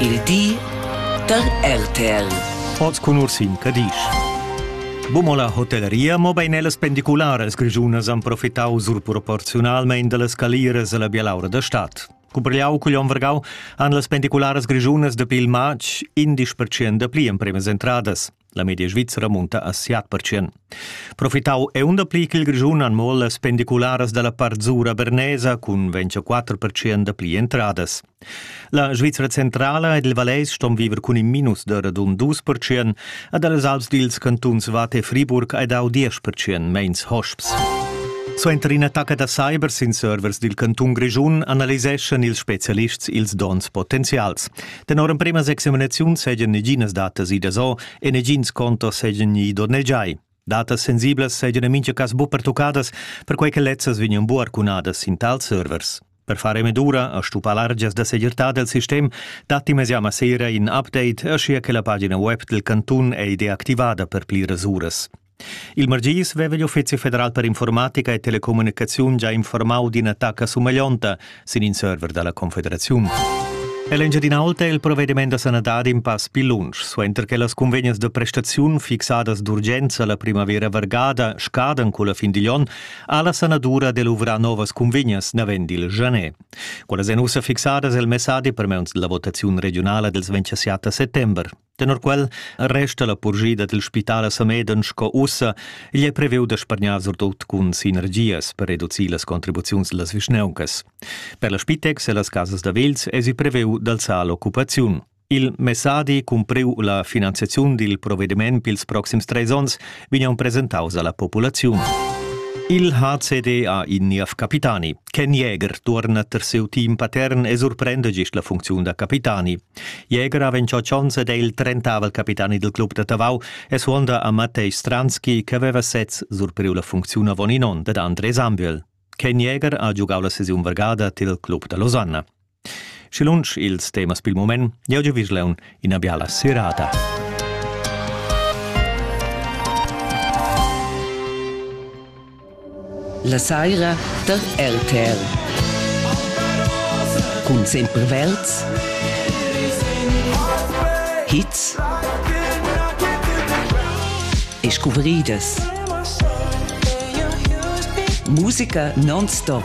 Il di dad RTL. Oz cun Ursin Cadisch. Bomo la hotelleria, mobein ellas pendicularas grischunas han profitau surproporziunalmein dallas caliras alla bialaura da stad. Cumprigliau cugl onn vargau han las pendicularas grischunas dapi il matg in dispertschien da pli empremas entradas. La media svizra munta a siat percent. Profitau è un pli ch'il Grischun han mo las pendicularas dalla Parzura Bernesa cun 24% da pli entradas. La Svizra centrala ed il Vallais ston viver cun in minus da radun 2% ed als Alps dils cantuns Vate e Friburg hai dau 10% meins hosps. Suenter in'attacca da cyber sin servers dil cantun Grischun analiseschan ils spezialists ils donns potenzials. Tenor emprema examinaziun seigien neginas datas idas o e negins contos seigien gni donnegiai. Datas sensiblas seigien en mincha cas bu pertuccadas, perquei che lezzas vegnan bu arcunadas in tals servers. Per fare medura a stupar largias da segirtà del sistem, datti mesiama sera in update, aschia che la pagina web del cantun ei deactivada per pli rasuras. Il margis veva igl Uffizi federal per informatica e telecommunicaziun già informau d'ina tacca sumeglionta sin in server dalla Confederaziun. L'Engiadinaulta è il provvediment da sanadad in pass pil lunsch, suenter che las convegnas da prestaziun fixadas d'urgenza la primavera vargada scadan culla fin digl onn, ha la sanadura de luvrar novas convegnas navend il Janet. Quellas èn ussa fixadas el messadi per meuns della votaziun regionala dels 27 settember. Tenor quel resta la purschida dil spital a Sameden sco ussa, igl è previu da spargnar surtut cun sinergias per reducir las contribuziuns las vischnauncas. Per la Spitex e las casas da vels esi previu d'alzar l'occupaziun. Il messadi cumpriu la finanziaziun dil provvediment pils proxims treis onns vegnan presentaus alla populaziun. Il HCD ha in niev capitani. Ken Jäger tuorna ter siu team patern e surprenda gist la funcziun da capitani. Jäger ha ventschot schons ed è il trentavel capitani dil club da Tavau e suonda a Mattei Stranski che aveva sez surpriu la funcziun avon in onn dad André Sambiel. Ken Jäger ha giugau la sesiun vargada til club da Losanna. Schi lunsch ils temas pil mument, jau giu visleun ina biala serata. La saira da RTL. Cun sempre Welz. Hits. E scuvriedas. Musica non-stop.